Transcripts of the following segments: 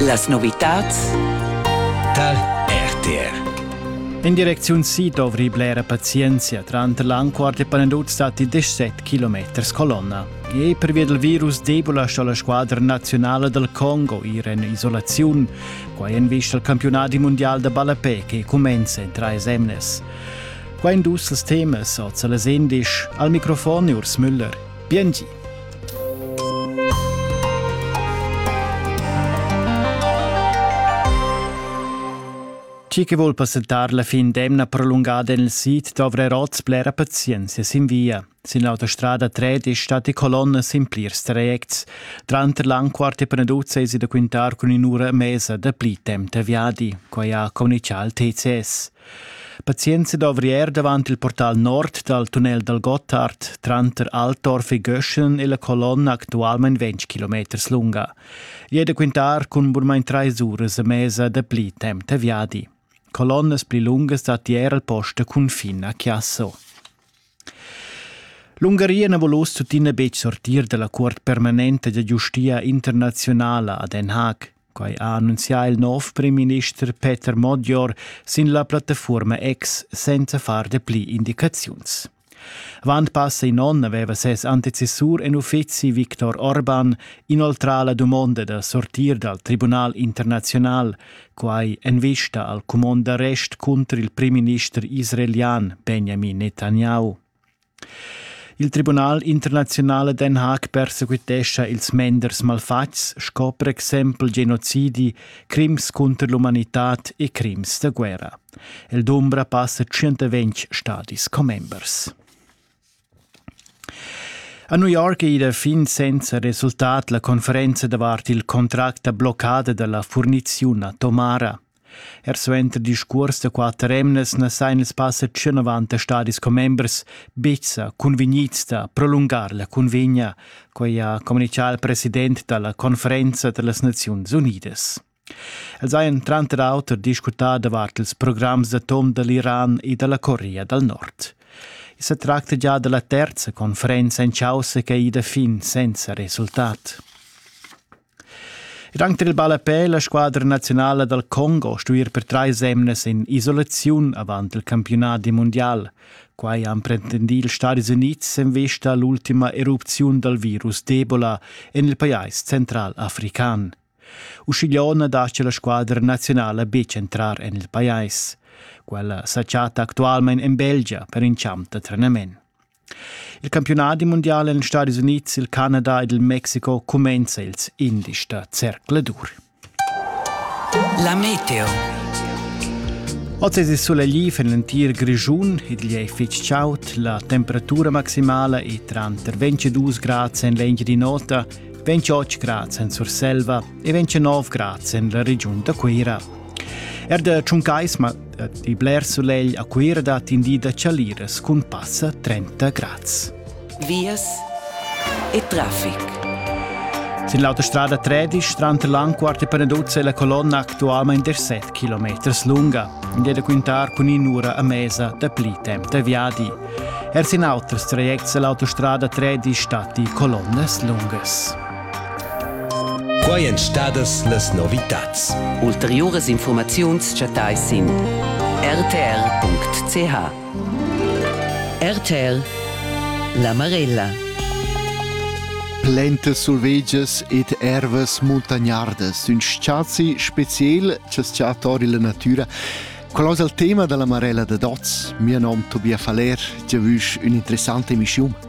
Las novitads dal RTR in direcziun si dovri blera pazienzia. Tranter l'anquart e Panenduz datti 17 km colonna. E pervia dal virus debula sto la squadra nazionala dal Congo ir en isolaziun. Quai en vista al campionadi mondial da ballapè che cumenza en trais emnes. Qua in dus temas oz alle 16. Al microfon Urs Müller. Biengi. Chi che vuol passentar la fin d'emna prolungada nel sit dovrà oz blera pazienzia sin via. Sin l'autostrada 3 stat e colonnas in plirs trajects. Tranter l'anquart e Panaduzza es da quintar cun in'ura mesa da pli temp da viadi, quai ha comunichà il TCS. Pazienza d'ovrier davant il portal nord dal tunnel dal Gotthard tranter Altorf e Göschen e la colonna actualmain 20 km lunga. È da quintar cun burmain trais uras e mesa da pli temp da viadi. Colonnas pli lungas datti er al post da confin a Chiasso. L'Ungaria na volus tuttina betg sortir da la cuort permanenta da giustia internazionala a Den Haag. Quai ha annunzià il nov primminister Peter Modior sin la plattafuorma X senza far dapli indicaziuns. Avant passa in onn aveva ses antecessur en uffizi Viktor Orban inoltrà la dumonda da sortir dal Tribunal internazional, quai en vista al cumond d'arrest cunter il primminister israelian Benjamin Netanyahu. Il Tribunal internaziunal a Den Haag persequitescha ils menders malfatgs sco per exempel genocidi, crims cunter l'umanitad e crims da guerra. El dumbra passa 120 stadis commembers. A New York è ida fin senza resultat la conferenza davart il contract da bloccada dalla furniziun a Tomara. Er suenter discuors da quatter emnas na sajan ils passa tschennovanta stadis commembers betg sa cunvegnids da prolungar la cunvegna, quai ha communitgà il president da la conferenza da las Naziuns Unidas. Els hajan tranter auter discutà davart ils programs d'atom da l'Iran e da la Corea dal Nord. I sa tracta già da la terza conferenza en chaussa che è ida fin senza resultat. Ed anche il ballapè la squadra nazionala dal Congo stuir per trais emnas in isolaziun avant il campiunat di mundial. Quai han pretendì ils Stadis Unids en vista a l'ultima erupziun dal virus d'Ebola en il pajais central-african. Uscigliò na dascia la squadra nazionala betg entrar en il pajais. Quella sa chatta actualmain en Belgia per in champ da trenament. Il campiunadi mundial en Stadis Unids, il Canada ed il Mexico cumenza ils indies da zercladur. La meteo. Oz solegli en l'entir Grischun, igl è fitg chaud, la temperatura maximala è tranter 22 grads en l'engi di nota, 28 grads en Surselva e 29 grads en la regiun da Cuira. Er da Tschuncaisma e bler sulegl a Cuira dat in di da chaliras cun passa 30 grads. Vias e traffic. Sin l'autostrada 13 tranter Lanquart e Peneduzza è la colonna actualmente 7 km lunga. In è da quintar cun in'ura a mesa da pli temp da viadi. Er sin auters trajects è l'autostrada 13 stati colonnas lungas. Quai èn stadas las novitads. Ulteriuras infurmaziuns chattais sin rtr.ch. RTL La Marella Plentes survegias ed ervas muntagnardas, ün spazi speciel che sta tori la natura. Qual es il tema dalla Marella da Dots? Mio nom Tobias Faller, giavüsch ün'interessanta emischiun.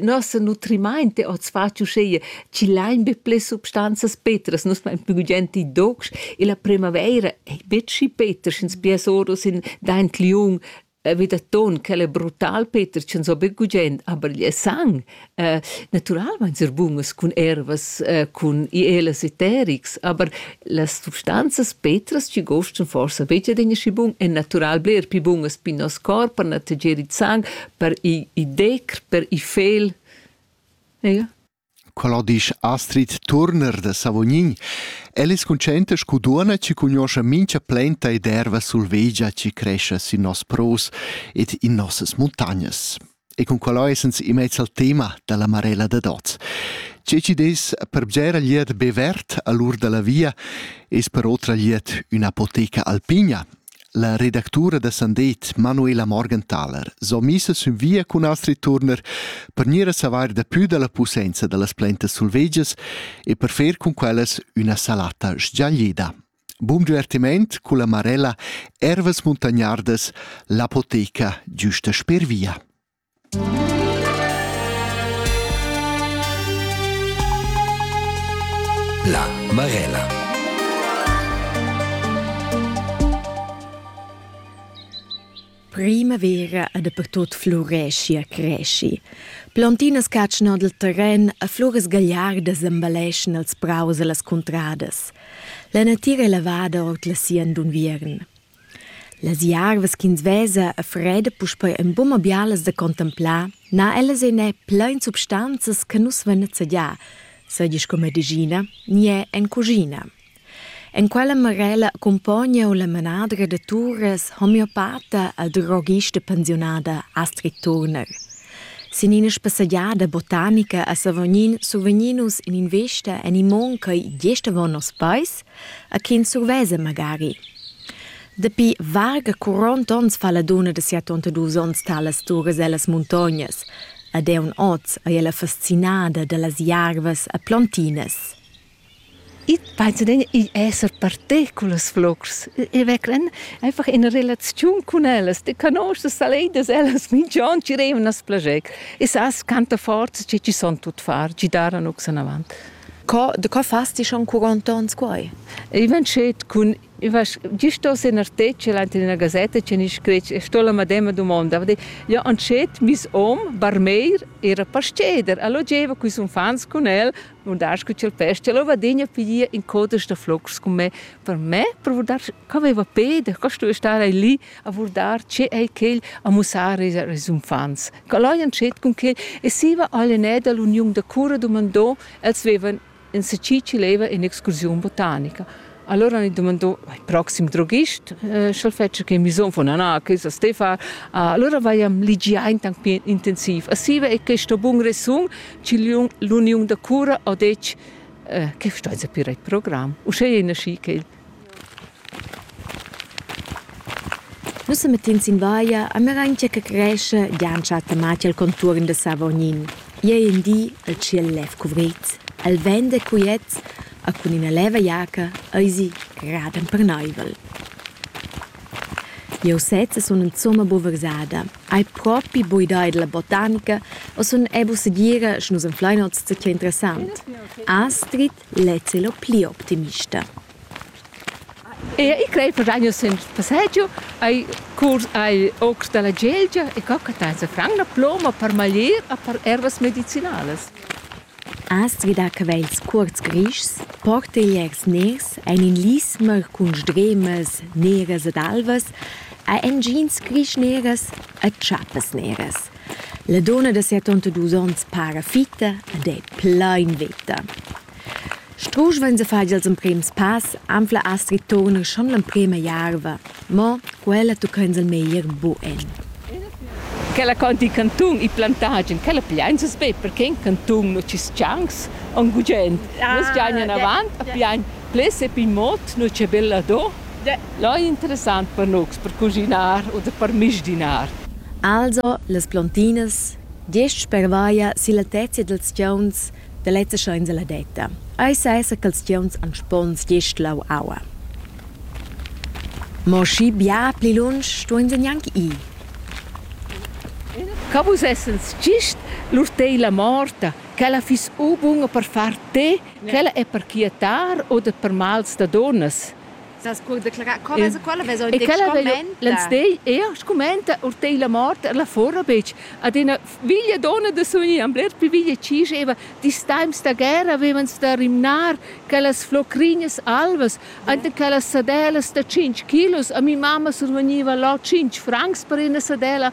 Nossa nutrimaint è hoz fat uschea chi lain be ples substanzas petras. Nus fain plü gugent i docs e la primavaira ei betg schi peter, sch'ins piars oros in daint liung vi da ton. Quel è brutal peter, sch'ins ho be gugent, aber il sang natüral vain ser bunas cun ervas, cun ielas e terics, aber las substanzas petras chi gostan forsa betg adegna schi bun, èn natüral bler pli bunas per nos corp, per nateger il sang, per i decr, per i fel. Ega? Quella disch Astrid Turner da Savognin. El es consciente scu duonna chi cugnoscha mincha plenta ed erva sulvegia chi crescha sin nos pros ed in nossas muntagnas. E con quella essens immez al tema da la Marella da Doz. Tge ci des per bgera liet be vert all'ur da la via es per otra liet un'apoteca alpina, La redactura da Sandet, Manuela Morgenthaler, so missa sün via cun Astrid Turner per gnir a savair dapü da la pussainza da las plantas sulvegias e per fer cun quellas üna salata sgiaglida. Bun divertiment culla Marella Ervas Muntagnardas, l'apoteca giusta sper via. La Marella. Primavera e dapertut fluresci e cresci. Plantinas catschan dal terren e floras gagliardas embelleschan els praus e las cuntradas. La natira è lavada ord la sien d'unviern. Las jarvas ch'ins vesa a freda puspei en buca bialas da contemplar, n'ha ellas en è plein substanzas che nus vein nezzadià, seigi sco medischina ni è en cuschina. En quella marella accumpogna la manadra da turas homeopata la drogista pensiunada Astrid Turner. Sin ina spassegiada botanica a Savognin survegnin nus in'invista en imon ch'ei gest avon nos peis a chi ins survesa magari. Dapi varga 40 onns fa la dunna da 72 onns talas turas ellas muntognas, ed eun oz ei ella fascinada dallas jarvas e plontinas. Ich penso den, ich esse partì con les flocs. Ich vecklen einfach in relaziun con ellas. Ti conosces saledas, ellas minch'on ci revan as plager. E sas quanta forza che ci son tut far, ci daran ox in avant. Co, de co fas ti schon quarant ons quai? I van schet cun Gli sto se nartece ante una gazzetta che ni scretg e sto la madema domanda. Ja antschet mis om barmeir era pasceder. Allo geva quis unfants cun el, nun das cu cel pesce, lo vadegna piglia in codas da flocs con me. Per me, per dar, co aveva pede, co sto stare lì a vurdar tge è quel a mussar ils uffants. Quel hajan schet cun quel e siva all'enè da l'uniun da cura dumandò, els vevan en seci chi leva in'excursiun botanica. Allora han dumandò il proxim droghist, sch'el fetscha che misom von Anna, che sa ste far. Allora vaiam ligiaint anc pli intensiv. A siva è questo bun resun ch'l'uniun da cura ha detg che sta a pir il program. Uschè è nasci quel Nus semettins in vaia a Meraingia che crescha giantscha a Tamatia el contuorn da Savognin. I ei in di il tschiel lev cuvrit, el vent è quiet e cun ina leva jaca eisi raden perneivel. Jeu sezza sun insumma buca versada, hai propi buca idea dalla botanica e sun era buca segira sche nus anflein oz zutger interessant. Astrid Lez è lo pli optimista. E i crei per anno sen passaggio ai curs ai ocs dalla Gelgia e co che ta sa fran la ploma per maglier a per ervas medicinalas. Astgida che va ils cuorts grischs, portegliers ners ein in lismer cun sdremas neras ed alvas, a engins grisch neras e tschappes neras. La donna da settantadus onns para fitta ed è plain veta. Strusch vegn a far ils emprims pass, anfla Astrid Turner schon l'emprema jarva, mo quella tucca ins il meglier bugen. Quella conti cantun e plantagen, quella piain ses be perché in cantun no ci schangs on gugent. Nus giain anavant, a piain ples e pin mot, no c'è bella do. Lai interessant per nus per cuschinar u per misdinar. Also las plontinas, gest spervaia silla tezia dils tgeuns da lezza scha insaladetta. Ei sesa ch'ils tgeuns han spons gest lau aua. Mo schi bia pli lunsch stuein se gnanc ir. Ca vus essens gist lur teila morta, ch'ella fiss u bunga per far te Quella è per quietar u da per mals da dunnas. Sas co declarar quellas e quella vesa e quella veglia l'enstagl er scumenta or tei la mort er la fora betg ad ina veglia donna da suni am bler pli veglia ci scheva dis times da guerra avevan sta rimnar quellas flocrinas alvas ante quellas sadelas da 5 kilos a mi mamma surveniva là 5 francs per ina sadella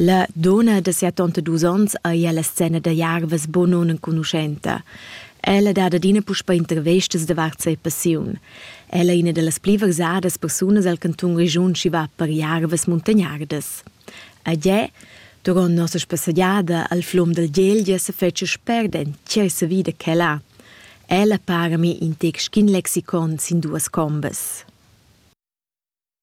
La dunna da siatonta dus onns ei ella scena da jarvas buca nunenconuschenta. Ella dat adina puspei intervestas davart sia passiun. Ella è ina dallas pli versadas persunas el cantun Grischun chi va per jarvas muntagnardas. A Gie, duront nossa spassegiada al flum dal Gelgia se fece spert en tgesa vida che là. Ella para mi in tec schin lexicon sin duas combas.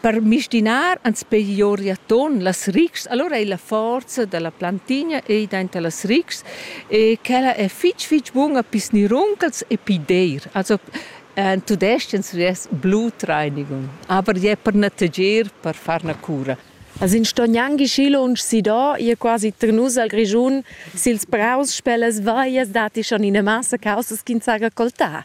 Per mistinar ans peglioria ton las ritgs, alura ei la forza dalla plantigna ei dainter las ritgs e quella è fitg fitg bunga pi sniruncals e pi deir. Also en tudestg ries Blutreinigung, aber je per nettegier, per far na cura. As ins sto gnanc schi lunsch sidò, je quasi ternus al Grischun sils praus, sper las veias datti schon ina massa caussas ch'ins ha raccoltà.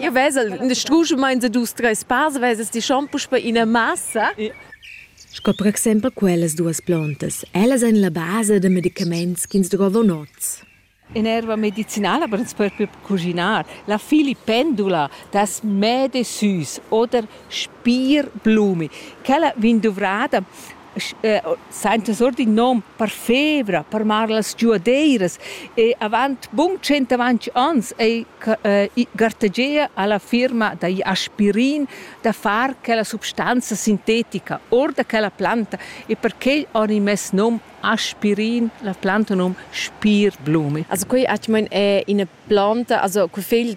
Io vesel in struschemaint da dus, treis pass, vesas ti schon puspe ina massa. Sco per exempel quellas duas plantas. Ellas ein la basa da medicaments ch'ins drovan oz. In erva medicinala per ens propi cuginar. La filipendula das mädesüß oder Spierblume. Quella vegn duvrada saintas our d'ün nom per fevra, per amar las giuadeiras e avant bun tschient avanti ans ei gartegia alla firma da aspirin da far quella substanza sintetica or da quella planta e perquei ho i mess nom aspirin, la planta nom Spirblumi. Also quei atgmain è ina planta, also quei fegl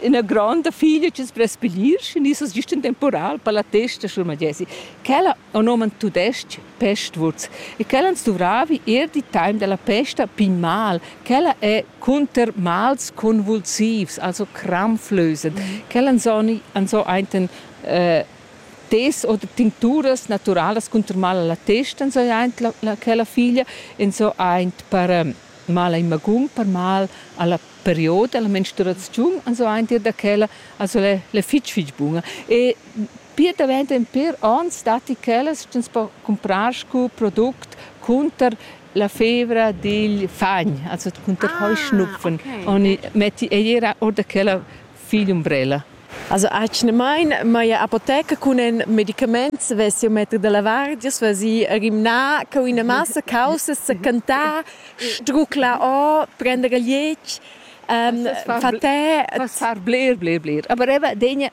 ina gronda figlia che sbrespelir și nisas gist in temporal per la testa sur Madesi. Quella on oman tudesc pestwurz e quella ans duvravi er di time della pesta pin mal. Quella è cunter mals convulsivs, also krampflösend. Quella ans so einten äh, tes oder tincturas naturalas cunter mal alla testa, so eint la, la, quella figlia, en so eint per mal in magun, per mal alla period dalla menstruaziun ans aint ir da quella also l'è, l'è fich fich buna e pir davent in pir ons datti quellas ch'ins po cumprar scu product cunter la fevra digl fagn, also cunter ah, hoi schnupfen. Okay. Oni metti eir or da quella Figl umbrella. Also atgnamain m'haja apoteca cun en medicaments vess jau metg da lavar, giast vesi rimnà co ina massa caussas, secantà, struclar or, prender il liec, fatè. Far bler, bler, bler. Aber eben den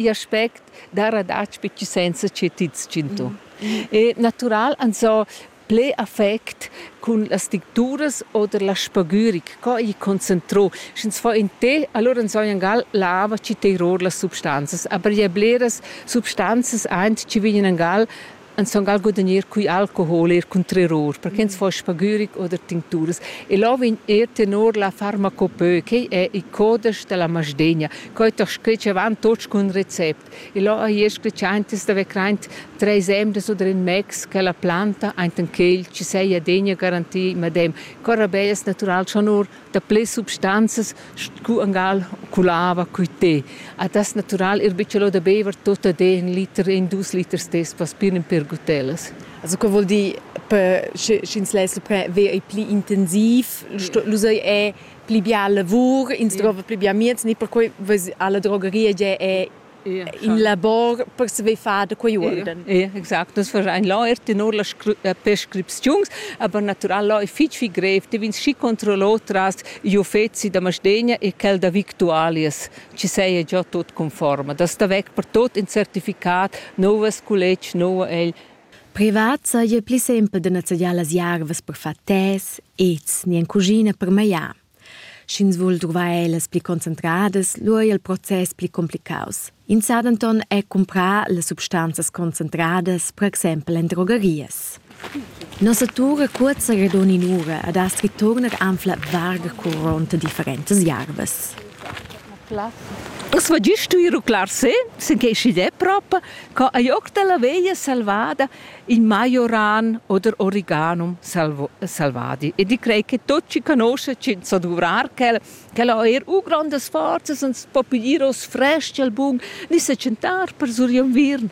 aspekt da radatsch bitte senza che ti tschintu. E natural, also Ple affect cun las dicturas oder la spagüric, co ei concentrò, sch'ins fa in té, allora enzognan gal lava chi teiror las substanzas, aber je bleras substanzas aint chi vegnan gal enzon gal gudagnir cui alcohol eir cun terror, perché ins fa spagüric oder tincturas. E là vegn eir tenor la farmacopeu, quei è il codesch della Masdegna, co ei ta scretsch avant tots cun recept. E là ha io scletschantas d'avair craint treis emdas u drin mex ch'ella planta ainten quel chi seia degna garantir medem cura be es natural schon or da ples substanzas scu angal cu l'ava cui te. A das natural ir bütschelò da beiver tot ad e ün liter e dus liters dess paspir ün pêr gutellas. Also que voul dir, per sch'ins less le ver ei pli intensiv, l'usai è pli bia lavur, ins yeah. drova pli bia mieds, ni perquei alla drogeria è in labor per saver far da quei urden. Ja, exact, das wahrscheinlich läuft nur las äh, Preskriptions, aber natural läuft fitch viel grev, die vins schi controllo tras gli uffezi da Masdegna e quel da Victualias, ci sei già tot conforme. Das da weg per tot in certificat, novas college, novo el Privat saja pli simpel da nezzadiar las jarvas per far tes, ets ni en cuschina per magliar. Sch'ins vul druvar ellas pli concentradas, lura è il process pli cumplicaus. Ins sa denton er cumprar las substanzas concentradas, per exempel en drogerias. Nossa tur è curta ed onin'ura ed ha stritt turnar anfla varga curonta differentas jarvas. Uss va gist stuir ruclar se, sinquei schi de prop, co ei oc dalla veglia selvada in majoran oder origanum selvadi. E di crei che tot chi conosce cin so duvrar quel, quel ha eir u grondas forzas, ans po piglir oss fresc al bun, ni secenttar per sur inviern.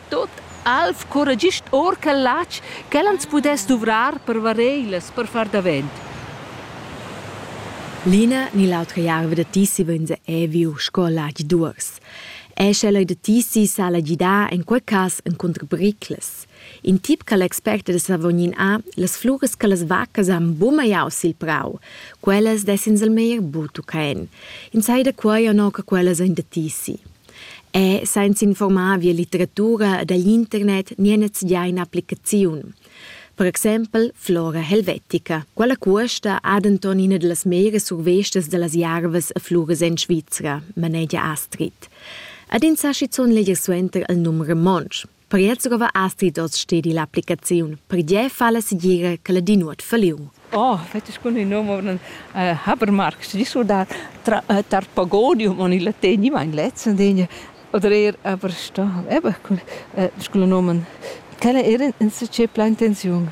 Tot alv curra gist or quel latg ch'el ans pudess duvrar per vareilas, per far davent. L'ina ni l'autra jarva da tissi vegns ei viu sco latg d'uors. Ei sche leu da tissi sala gidar en quei cass encunter briclas. In tip che l'expert da Savognin ha, las fluras che las vaccas han bumagliau sil prau, quellas dessen el meglier buca en. Ins ei da quei o no che quellas ein da tissi. E senz'informar via litteratura dagl internet nian enzatgei applicaziun. Per exempel flora helvetica. Quella cuosta ha denton ina dallas meras survestas dallas jarvas e fluras en Svizra, manegia Astrid. Ad ins ha schizun leger suenter il num romontsch. Per Jerzegova astri hoz stedi l'applicaziun, pertgè falla segira che la di nuot falliu. Oh, fetg bun il num Habermarkt, di surdar tar Pagodium en il latin, ich mein letzten Dinge, oder eher Aberstau, eben, sculo nomen. Quella era in succès plein tensiun.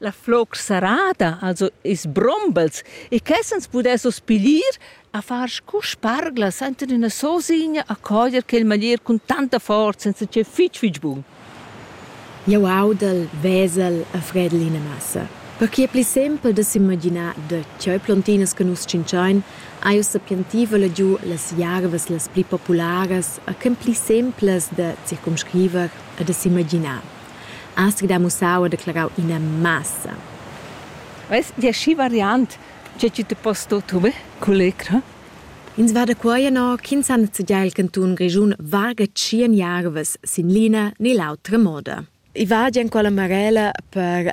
La floc serrada, also ils brombels, e ch'essens pudessos piglier a far scu sparglas enten üna sosigna a cojer quel maglier cun tanta forza senza che fitg fitg bun. Jau audel, vesel e fredel ina massa. Perquai è pli simpel da s'imaginar da cheu plontinas che nus tschintschain, ha jau sapientiva legiu las jarvas las pli popularas e ch'en pli simplas da circumscriver e da s'imaginar. astg da mussau e declarau ina massa. Veis dir schi variant, tge tgi te pos sto truver cull'ecra? Ins va da quai no ch'ins han zegià il cantun Grischun varga tschien jarvas sin l'ina ni l'autra moda. I va già en quella marella per